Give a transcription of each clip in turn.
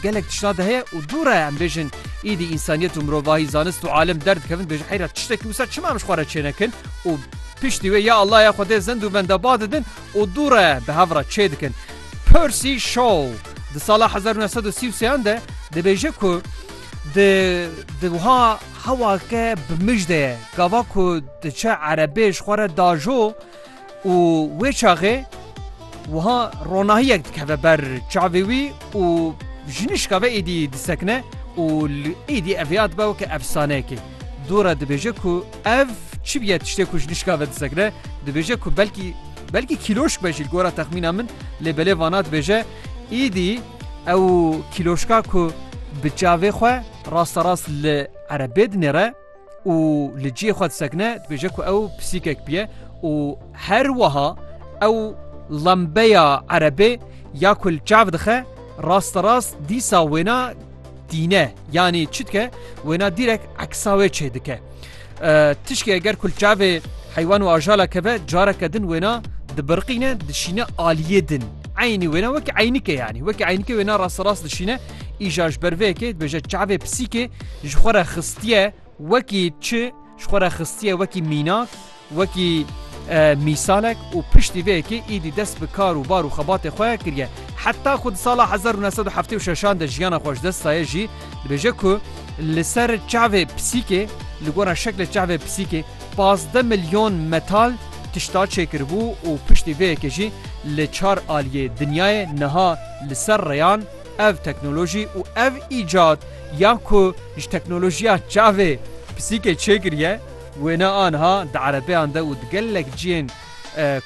Gelek tiştan de heye û dûr e em bêjin îdî însaniyet û mirovahî, zanist û alim derdikevin bêjin heyra tiştekî wisa çima em ji xwe re çênekin û piştî wê ya Allah ya Xwedê zind û benda ba didin û dûr e bi hev re çê dikin. Percy Shaw di sala hezar û neh sed û sî û sêyan de dibêje ku di di wiha hewake bi mij de ye gava ku diçe erebê ji xwe re dajo Û wê çaxê wiha ronahiyek dikeve ber çavê wî û jinişka ve êdî disekine û li êdî ev ya dibe weke efsaneyekê. Dora dibêje ku ev çi bûye tiştê ku jinişka ve disekine, dibêje ku belkî belkî kîloşk be jî li gora texmîna min lê belê vana dibêje êdî ew kîloşka ku bi çavê xwe rasterast li erebê dinêre, û li cihê xwe disekine dibêje ku ew pisîkek bûye û her wiha ew lembeya erebê ya ku li çav dixe rasta rast dîsa wêna dîne yanî çi dike wêna dîrek eksa wê çê dike tişkê eger ku li çavê heywan û ajala keve careke din wêna dibirqîne dişîne aliyê din eynî wêna wekî eynike yanî wekî eynike wêna rasta rast dişîne Îja ji ber vê yekê dibêje çavê pisîkê ji xwe re xistiye wekî çi ji xwe re xistiye wekî mînak wekî mîsalek û piştî vê yekê îdî dest bi kar û bar û xebatê xwe kiriye. Heta ku di sala 1976 de jiyana xwe ji dest daye jî dibêje ku li ser çavê pisîkê li gora şekle çavê pisîkê 15 milyon metal tişta çêkiribû û piştî vê yekê jî li çar aliyê dinyayê niha li ser reyan Ev teknolojî û ev îcat ya ku ji teknolojiya çavê pisîkê çêkiriye, wêne aniha di erebeyan de û di gelek cihên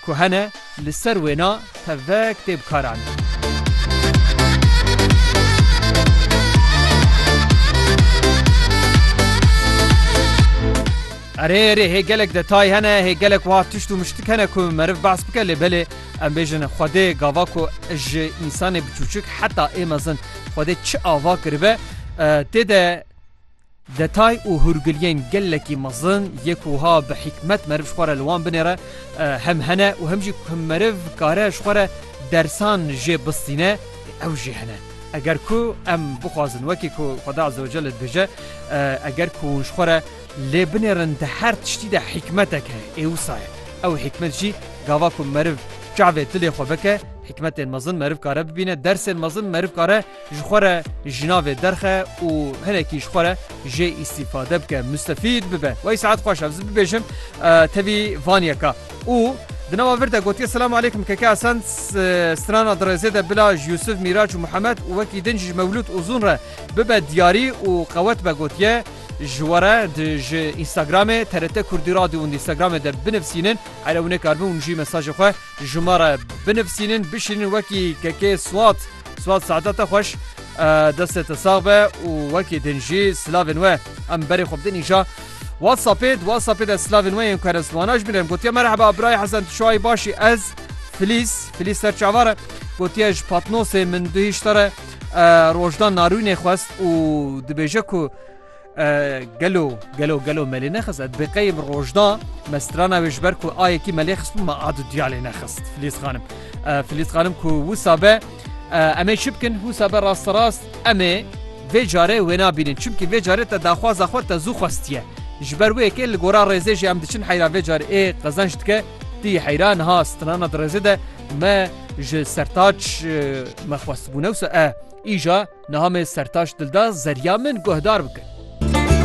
ku hene li ser wêna tevek tê bikaranîn. Erê erê hê gelek detay hene, hê gelek wiha tişt û miştik hene ku meriv behs bike lê belê Em bêjin Xwedê gava ku ji însanê biçûçik heta ê mezin Xwedê çi ava kiribe, tê de detay û hûrgiliyên gelekî mezin yê ku wiha bi hîkmet meriv ji xwe re li wan binêre hem hene û hem jî ku meriv dikare ji xwe re dersan jê bistîne ew jî hene. Eger ku em bixwazin wekî ku Xweda Ezewecel dibêje eger ku hûn ji xwe re Lê binêrin di her tiştî de hîkmetek heye, ê wisa ye. Ew hîkmet jî gava ku meriv çavê dilê xwe bike, hîkmetên mezin meriv kare bibîne, dersên mezin meriv kare ji xwe re ji navê derxe û hinekî ji xwe re jê îstîfade bike, mustefîd bibe. Wey Sead xweş ez bibêjim tevî van yeka. Û di nava vir de gotiye Selamu aleykum Keke Esen strana dirêzê de bila ji Yusuf, Mîraç û Muhemed û wekî din jî ji Mewlûd Uzun re bibe diyarî û qewet be gotiye, Ji we re di ji Instagramê TRT Kurdî Radio û Instagramê de binivsînin. Here hûn ê karbin hûn jî mesajê xwe ji me re binivsînin, bişînin wekî kekê Swat. Swat saeta te xweş. Destê te sax be û wekî din jî silavên we em berê xwe bidin îja WhatsAppê. Di WhatsAppê de silavên we yên ku here ziwana ji min re em gotiye merheba birayê Hesen tu çawa yî baş î ez Filîz Filîz ser çawa re gotiye ji Patnosê min duhîşt re. Rojdan Narûnê xwest û dibêje ku gelo gelo gelo melê nexist et biqeyim rojda me strana wê ji ber ku ayekî melê xist me ad diyalê nexist Filîz xanim Filîz xanim ku wisa be em ê çi bikin wisa be rast rast em ê vê carê wê nabînin çimkî vê carê te daxwaza xwe te zû xwestiye ji ber wê yekê li gora rêzê jî em diçin heyra vê carê ê qezenç dike tî heyra niha strana di rêzê de Me ji Sertaç me xwestibû newsa e, îja niha me Sertaç Dilda zerya min guhdar bike.